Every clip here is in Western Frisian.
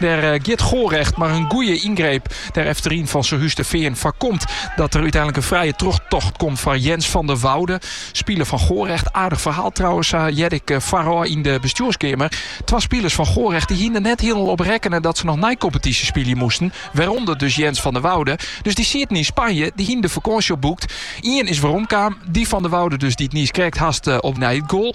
Der giet Gorecht mar in goeie yngreep der efteryn fan Serhus de Fean foarkomt dat der úteinlik in frije trochtocht komt foar Jens van der Woude, spiler fan Gorecht. Aardich ferhaal trouwens, sa hearde ik foarôf yn de bestjoerskeamer. Twa spilers fan Gorecht dy hiene der net hielendal op rekkene dat se noch neikompetysje spylje moasten, wêrûnder dus Jens van der Woude. Dus dy sieten yn Spanje, dy hiene de fakânsje al boekt. Ien is weromkaam, dy van der Woude dus dy't niiskrekt hast op nei it goal.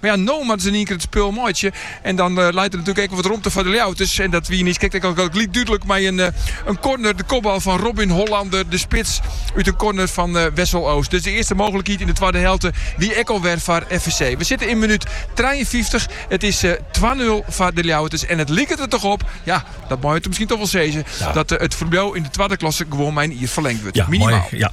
Mar ja, no moatte se yn ien kear it spul meitsje en dan leit der natuerlik ek wol wat romte foar de Ljouwerters. En dat wie niiskrekt ek al gelyk dúdlik mei in korner, de kopbal fan Robin Hollander, de spits, út in korner fan Wessel Oost. Dus de earste mooglikheid yn de twadde helte wie ek al wer foar FVC. We sitte yn minút trijenfyftich. It is twa nul foar de Ljouwerters en it liket der toch op, ja, dat meie we miskien toch wol sizze, dat it ferbliuw yn de twadde klasse gewoan mei in jier ferlingd wurdt. Minimaal.